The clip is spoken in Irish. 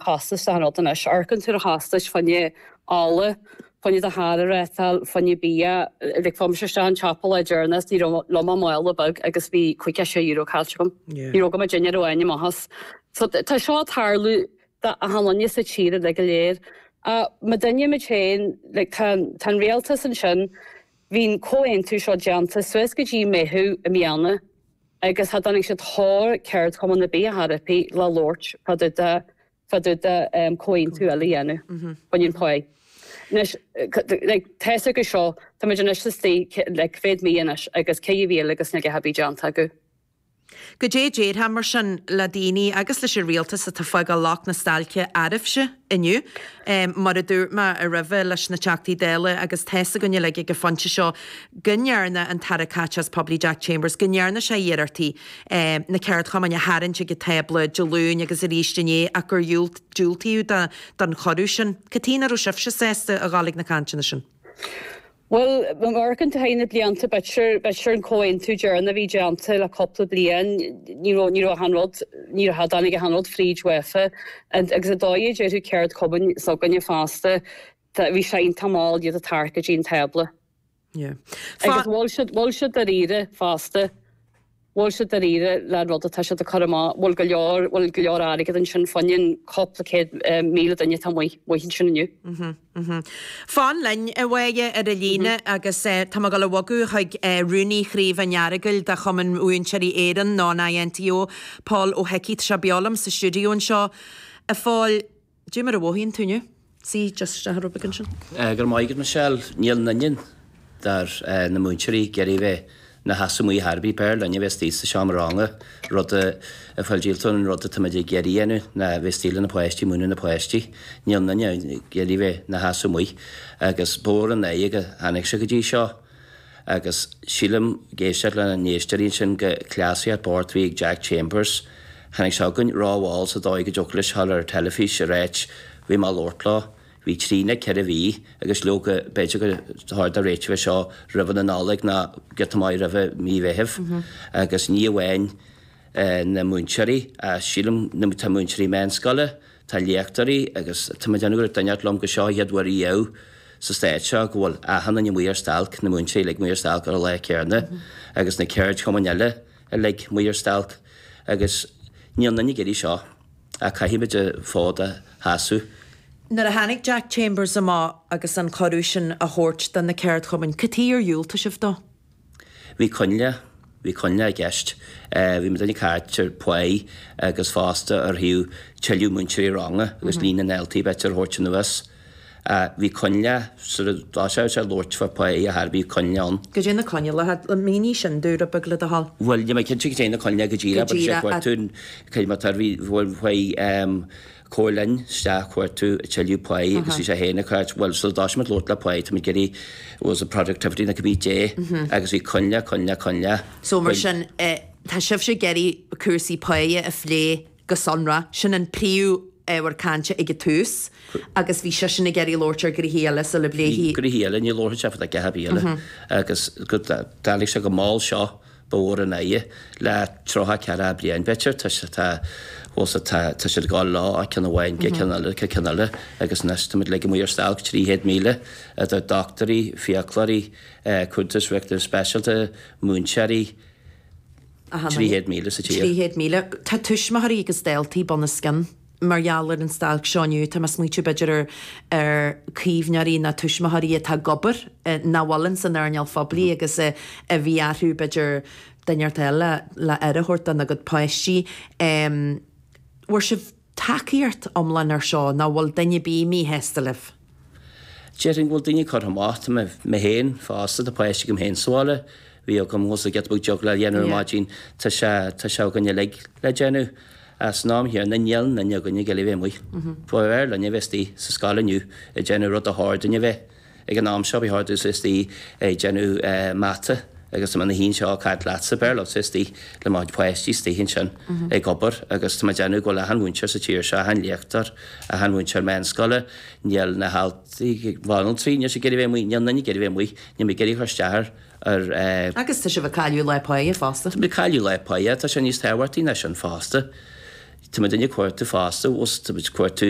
costas an rud anois. Amharcann tú ar chostais fá choinne ola, fá choinne do charr, peitreal, fá choinne bia. Like, chuaigh mise isteach chun an tsiopa lá deireanach agus ní raibh liom ach mála beag agus bhí caoga a sé euro caillte agam. Ní raibh agam ach dinnéar amháin amachas. So, tá seo ag tarlú d'achan duine sa tír uilig go léir. Ach maidir linn muid féin, like, tá an rialtas ansin, bhí an comhaontú seo déanta suas go dtí Meitheamh i mbliana. Agus cha dtáinig siad fhad le ceardchumann ar bith le labhairt fá dtaobh de chomhaontú eile a dhéanamh. comhaontú pá. Anois, like, tá a fhios agat seo, táimid anois sa tríú, ceathrú mí anois agus cad é an mhoill agus níl a dhath ar bith déanta acu? Goidé a déarfá, mar sin, le daoine agus leis an rialtas atá fágáil locht na stailce oraibhse? inniu. Mar a dúirt mé roimhe leis na Teachtaí Dála agus tá's againn uilig ag an phointe seo go ndearna an tAire Caiteachais Phoiblí Jack Chambers, go ndearna sé iarrachtaí na ceardchumainn a tharraingt chuig an tábla Dé Luain agus arís inné ach gur diúltaíodh don chuireadh sin. Cad chuige nach raibh sibhse sásta a ghabháil chuig na cainteanna sin? Bhuel, mar go bhfuil thar na blianta, b'fhéidir an comhaontú deireanach a bhí déanta le cúpla bliain, ní raibh achan rud, ní, cha dtáinig achan rud fríd uafa. Agus ar ndóigh, na ceardchumainn s'againne fosta, bhí siad tamall iad a tharraingt go dtí an tábla. Agus an bhfuil siad dáiríre fosta. bhfuil siad dáiríre leis an rud atá siad ag cur amach, bhfuil go leor, bhfuil go leor airgead ansin, fá choinne cúpla céad míle duine atá amuigh, amuigh ansin inniu. Fan linn, a Mháire, ar an líne agus tá mé ag dul a bhogadh chuig Rúnaí Chraobh an Earagail de Chumann Múinteoirí Éireann, nó an INTO, Pól Ó hIcí. Tá sé beo liom sa stiúideo anseo, a Phóil. Goidé mar a mhothaíonn tú inniu. C, Just seo an rubric ansin. Go raibh maith agat a Mhichelle, níl aon duine de na múinteoirí ag iarraidh bheith ina sheasamh amuigh ar chor ar bith, b'fhearr linn a bheith istigh sa seomra ranga, an rud a bhfuil muid díolta as, an rud atáimid ag iarraidh a dhéanamh ná bheith istigh le na páistí, ag múineadh na páistí, níl aon duine ag iarraidh bheith ina sheasamh amuigh agus is mór an trua go dtáinig sé go dtí seo. agus sílim ag éisteacht leis na héisteoirí ansin gur cleasaíocht b'fhéidir a bhí ag Jack Chambers. Tháinig sé chugainn rómhall, sa dóigh go dtiocfadh leis dul ar an teilifís ag ráit bhí mé ag labhairt leo. Bhí trí nó ceithre mhí agus leoga b'fhéidir gur cheart a réiteach seo roimhe na Nollag ná giota maith roimhe mí Mheithimh agus ní amháin na múinteoirí ach sílim na múinteoirí meánscoile, na léachtóirí agus, tá mé ag déanamh gur dhúirt duine inteacht liom gur seo an chéad uair ariamh sa Stát seo, go bhfuil achan duine amuigh ar stailc, na múinteoirí uilig amuigh ar stailc ar an lá céanna, agus na ceardchumainn eile uilig amuigh ar stailc, agus níl aon duine ag iarraidh seo, ach caithfimid an fód a sheasamh. Nuair a tháinig Jack Chambers amach agus an cuireadh sin á thabhairt do na ceardchumainn, cad chuige ar dhiúltaigh sibh dó? Bhí coinnle, bhí coinnle i gceist. Bhí mo dhuine ag cuartú páighe agus fosta orthu tuilleadh múinteoirí ranga agus líon na ndaltaí a bheith á dtabhairt anuas. Bhí coinnle, sort of, sula labharfadh sé labhairt fá páighe ar bith, bhí coinníoll ann. Goidé na coinníollacha iad, mínigh sin dúinn rud beag le do thoil. Bhuel, níl mé cinnte goidé na coinníollacha go díreach, goidé na cuairteoirí, cad é mar atá, bhí, bhuel, páighe, Chuaigh sinn isteach ag cuartú tuilleadh páighe agus bhí sé féin ag caint, bhuel sula dtig linn labhairt fá páighe, tá muid ag iarraidh, it was the productivity that could be dé agus bhí coinnle, coinnle, coinnle. So mar sin tá sibhse ag iarraidh cúrsaí páighe a phlé go sonrath, sin an príomh-ábhar cainte ag an tús agus bhí seisean ag iarraidh labhairt ar ghnéithe eile sula bpléifí. Gnéithe eile, ní labharfaidh sé fud fhaic ar thaibí eile agus go dtáinig sé go mall seo Ba mhór an oidhe le tríocha ceathracha bliain b'fhéidir toisc atá fós atá tá siad ag goil ó ceann amháin go ceann eile go ceann eile agus anois tá muid uilig amuigh ar stailc 300,000 idir doctúirí, fiaclóirí, cúntóirí riachtanas speisialta, múinteoirí, 300,000 sa tír. 300,000. Tá tuismitheoirí agus daltaí bunoscionn. Mar gheall ar an stailc seo inniu, tá mé ag smaoitiú, b'fhéidir, ar chaomhnóirí nó tuismitheoirí atá ag obair nach bhfuil ins an earnáil phoiblí agus a bhí orthu, b'fhéidir, duine a fháil le aire a thabhairt dona gcuid páistí. An bhfuair sibh tacaíocht iomlán ar seo, nó bhfuil duine ar bith míshásta libh? Déarfainn go bhfuil daoine curtha amach. Tá mé, mé féin fosta, tá páiste agam féin sa bhaile, bhí agam, tá fhios agat an juggle a dhéanamh ar maidin, tá sé, tá sé againn uilig le déanamh. San am chéanna, níl duine againn ag iarraidh bheith amuigh. B'fhearr linne bheith istigh sa scoil inniu ag déanamh rud a ba chóir dúinne bheith ag an am seo, bheith thart istigh ag déanamh mata. agus tá mé i mo shuí anseo ag caint leatsa, b'fhearr liom bheith istigh le mo pháistí, istigh ansin ag obair, agus tá mé ag déanamh go bhfuil achan mhúinteoir sa tír seo, achan léachtóir, achan mhúinteoir méanscoile, níl na haltraí na banaltraí, níl siad ag iarraidh bheith amuigh, níl éinne ag iarraidh bheith amuigh, níl mé ag iarraidh a chur isteach ar eh. Agus tá sibh ag cailleadh lá páighe fosta. Tá muid ag cailleadh lá páighe, tá sé níos tábhachtaí ná sin fosta, tá muid ag cuartú fosta, tá muid ag cuartú,